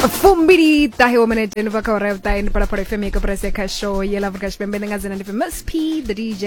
fumbili ṱahe wo minete ni bva kha ora vhuṱahe ni phalaphala fm ya kaporasi ya khasho ye la afrika tshipembe ndi nga dzina ndi famous p the dj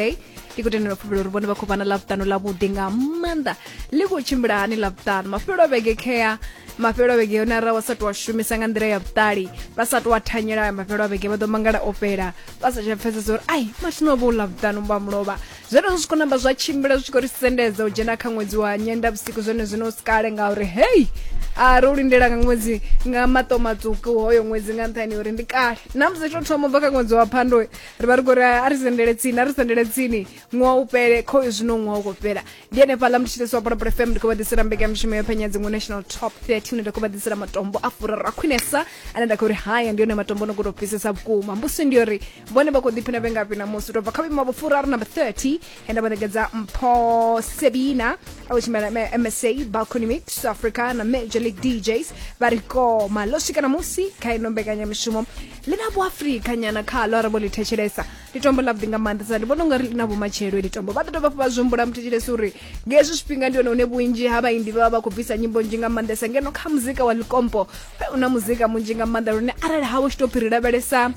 ndi khou tendela fhufhelo uri vhone vha khou vha na ḽavhuṱanu ḽavhuḓi nga maanḓa ḽi khou tshimbila hani ḽavhuṱanu mafhelo a vhege khea mafhelo a vhege yone arali vha sa tou a shumisa nga nḓila ya vhuṱali vha sa tou a thanyela mafhelo a vhege vha ḓo mangala o fhela vha sa tsha pfhesesa uri ai mathina o vha u ḽavhuṱanu vha mulovha Zwenezwo zwi khou namba zwa tshimbila zwi tshi khou ri sendedza u dzhena kha ṅwedzi wa nyendavhusiku zwone zwino u si kale ngauri hei a ro lindela nga ṅwedzi nga maṱo matswuku hoyo ṅwedzi nga nṱhani uri ndi kale na musi to thoma bva kha ṅwedzi wa phando ri vha ri khou ri a ri sendele tsini a ri sendele tsini ṅwaha u fhele kho zwino ṅwaha u khou fhela ndi henefhaḽa ndi tshi ḓiswa polopolo fm ndi khou vha ḓisela mbekamishumo yo phenya dziṅwe national top 30 ine nda khou vha ḓisela matombo a furaru a khwinesa ane nda khou ri haya ndi yone matombo no khou tou fhisesa vhukuma mbusi ndi uri vhone vha khou ḓiphina vhe ngafhi namusi u tou bva kha vhuimo vho furaru number 30 he nda vha ṋekedza mpho sebina a u tshimela msa balcony mix south africa na major league djs vha ri koma ḽo swika namusi kha ino mbekanyamushumo ḽi na vhuafrika nyana khaḽo arali vho ḽi thetshelesa ndi tombo ḽavhuḓi nga maanḓesa ndi vhona u nga ri ḽi na vhumatshelo ḽi tombo vha ḓo dovha vha zwihumbula muthetshelesi uri nga hezwi zwifhinga ndi hone hune vhunzhi ha vhaimbi vha vha vha khou bvisa nyimbo nzhi nga maanḓesa ngeno kha muzika wa ḽikompo u na muzika munzhi nga maanḓa lune arali ha wo tshi tou phiri lavhelesa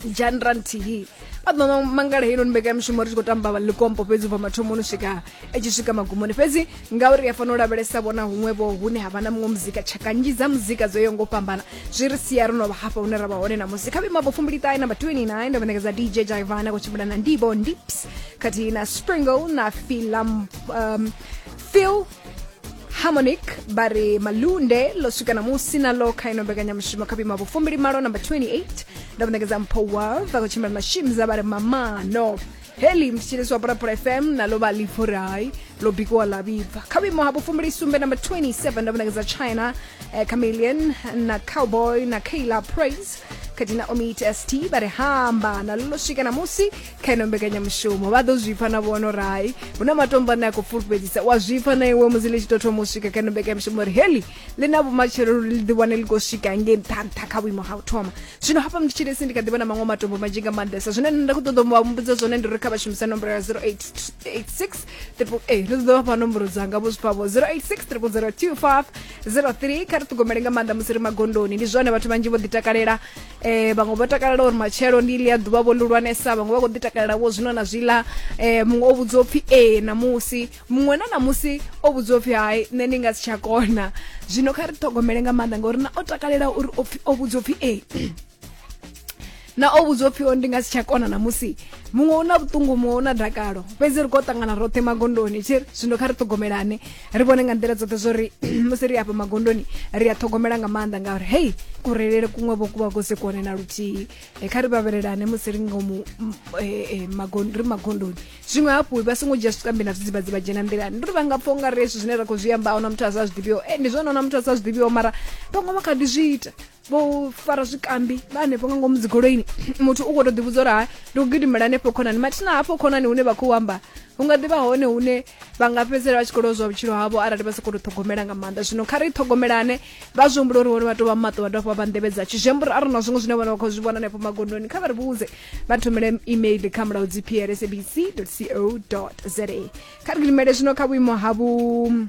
dzhanra nthihi vha ḓo mangala heinoni mbekanyamishumo ri tshi khou tamba likompo fhedzi ubva mathomoni swika i tshi swika magumoni fhedzi ngauri ya fanela u lavhelesa vhona huṅwevho hune ha vha na muṅwe muzika tshaka nzhi dza muzika dzo yo ngo fhambana zwi ri sia ro no vha hafha hune ra vha hone na musi kha vhimabo fumbiliṱahe namba 29 ndo vhanekedza dj jaivana khou tshimbila na ndibo ndips khathihi na springle na filam um, phil harmonic vha ri malunde ḽo swika namusi na ḽo kha ino mbekanyamushumo kha vhuima vhufumbili malo number 28 ndo muṋekedza mpho wa vha khou tshimbila na shimza vha ri mamano heli mthetshelesi wa pulapula fm nalo vha livorai ḽo bikiwa ḽa vhibva kha vhuimo ha vhufumbili sumbe number 27 ndo muṋekedza china eh, chameleon na cowboy na kayla praise khathihi na omit st vha ri hamba nalo ḽo swika namusi kha ino mbekanyamushumo vha ḓo zwipfa na vhono rai hu na matombo ane a khou fulufhedzisa wa zwipfa na iwe musi ḽi tshi tou thoma u swika kha ino mbekanyamushumo uri heli ḽi na vhumatshelo uri ḽi ḓiwane ḽi khou swika ngei nṱha nṱha kha vhuimo ha u thoma zwino hafha mnditshilesi ndi kha ḓivha na maṅwe matombo manzhi nga maanḓesa zwine nṋe nda khou ṱoḓa vha mmbudza zwone ndi uri kha vha shumisa nomboro ya 0886 triple a ri ḓo vhafha nomboro dzanga vho zwipfa vho 086 triple 025 03 kha ri ṱhogomele nga maanḓa musi ri magondoni ndi zwone vhathu vhanzhi vho ḓitakalela eh vhaṅwe vho takalela uri matshelo ndi ḽi a ḓuvha vho lulwanesa vhaṅwe vha khou ḓi takalela vho zwino na zwiḽa eh muṅwe o vhudziwa upfhi ee ṋamusi muṅwe na ṋamusi o vhudziwa upfhi hai nṋe ndi nga si tsha kona zwino kha ri ṱhogomele nga maanḓa ngauri na o takalela uri o vhudziwa upfhi ee na o vhudzwa upfhi ndi nga si tsha kona na musi muṅwe u na vhuṱungu muṅwe u na dakalo fhedzi ri khou ṱangana roṱhe magondoni tshi ri zwino kha ri ṱhogomelane ri vhone nga nḓila dzoṱhe zwo ri musi ri afha magondoni ri a ṱhogomela nga maanḓa ngauri hei kurelele kuṅwe vho kuvha kusi kuone na luthihi eh, kha ri vhavhelelane musi ri ngomu mm, eh, eh, ri magondoni zwiṅwe hafhu vha songo dzhia zwikambi na zwidzivhadzi vha dzhena nḓilani ndi ri vha nga pfha unga ri hezwi zwine ra khou zwi amba ahuna muthu a sa zwi ḓivhiho e ndi zwone ona muthu a sa zwi ḓivhiho mara vhaṅwe vha kha ḓi zwi ita vho fara zwikambi vha hanefho nga ngomu dzigoloini muthu u khou tou ḓivhudza uri ha ndi u gidimela hanefho khonani mathina hafho khonani hune vha khou amba hu nga ḓivha hone hune vha nga fhedzisela vha tshi khou lozwa vhutshilo havho arali vha sa khou tou ṱhogomela nga maanḓa zwino kha ri ṱhogomelane vha zwi humbula uri vhone vha tou vha maṱo vha dovha vha nḓevhe dza tshi zwi amba uri a ri na zwiṅwe zwine vhone vha khou zwi vhona hanefho magondoni kha vha ri vhudze vha thomele email kha mulaho dzi plsabc co za kha ri gidimele zwino kha vhuimo ha vhu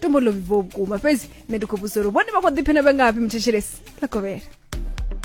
tombo ḽo vhibvaho vhukuma fhedzi nṋe ndi khou vhudzisa uri vhone vha khou ḓiphina vhe ngafhi muthetshelesi ḽa kovhela